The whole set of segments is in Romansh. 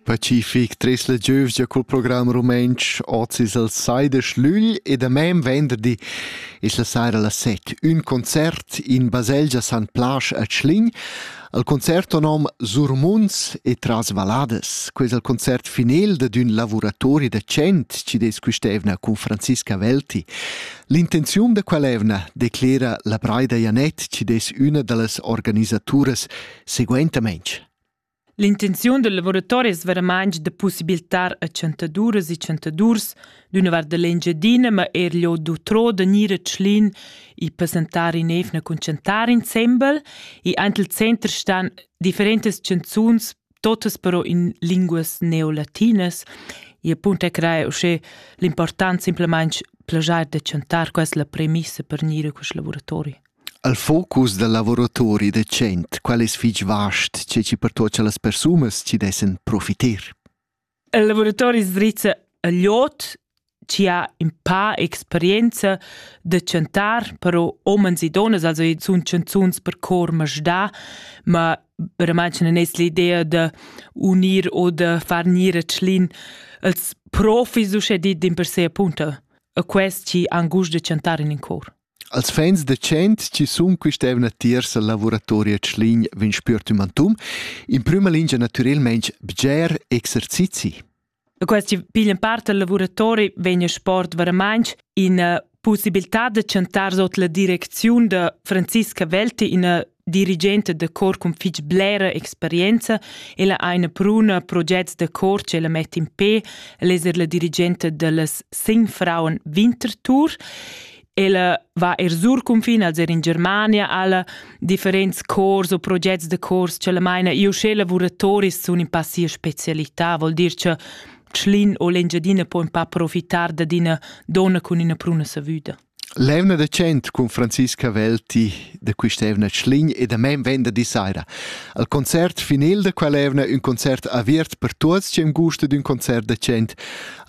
Pacific tres la giövgia cul program rumentsch oz es el sai da Schlügl e da mem venderdi es la saira las set ün concert in baselgia San Plasch a Tschlin al concert o nom Surmunds e tras valladas. Ques al concert final dad ün lavuratori da cent chi des quist'eivna cun Franziska Welti. L'intenziun da quell'eivna declera la Braida Janet chi des üna da las organisaturas Seguentamein L'intenziun del lavoratori es veramaing da pussibiltar a chantaduras e chantadurs d'üna vart da l'Engiadina, ma eir lio d'utrò da gnir a Tschlin e passentar in evna cun chantar insembel e aint il center stan differentas chanzuns, totas però in linguas neolatinas e appunto e craja uschè l'important simplamaing plagiar da chantar, quai es la premissa per gnir a quist lavoratori. El focus dal lavuratori decent, quel es fich vast, che chi pertuocha las persunas chi dessan profiter. Il lavuratori sdrizza a gliot chi ha ün pa experienza da chantar, però homens e donnas, also i sun chanzuns per cor masdà, ma verament non es l'idea da unir o da far gnir a Tschlin ils profis uschè dit dimpersè appunto a quels chi han gust da chantar in in cor. Als fans da tschient chi sun quist'eivna tiers al lavuratori a Tschlin vain spüert ün mantun, in prüma lingia natürelmaing bger exercizi. E questi piglian part al lavuratori vegn il sport veramainch in uh, possibilità da chantar sot la direcziun da Franziska Welti, ina dirigenta da cor cun fitg blera experienza, ella ha ina pruna projects da cor che la mette in pe, ella è la dirigenta dallas sin frauen Wintertour. Ella va er sur confin, als er in Germania, alle differents cors o projects de cors che la meina io sche lavoratoris sun in passia specialità, vuol dir che Schlin o l'Engiadina può un pa approfittare da dina donna con ina pruna savuta. L'eivna da tschient cun Francis Cavel ti da quist'eivna Schlign e da men venderdi saira. Al concert final da quell'eivna ün concert aviert per tuots chi am gusta d'ün concert da tschient,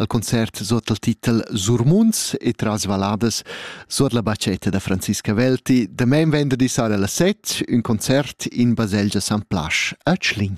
al concert sot il titel Surmunds e tras valladas sot la bacchetta da Francis Cavelti, da men venderdi saira las set, ün concert in baselgia San Plasch a Schlign.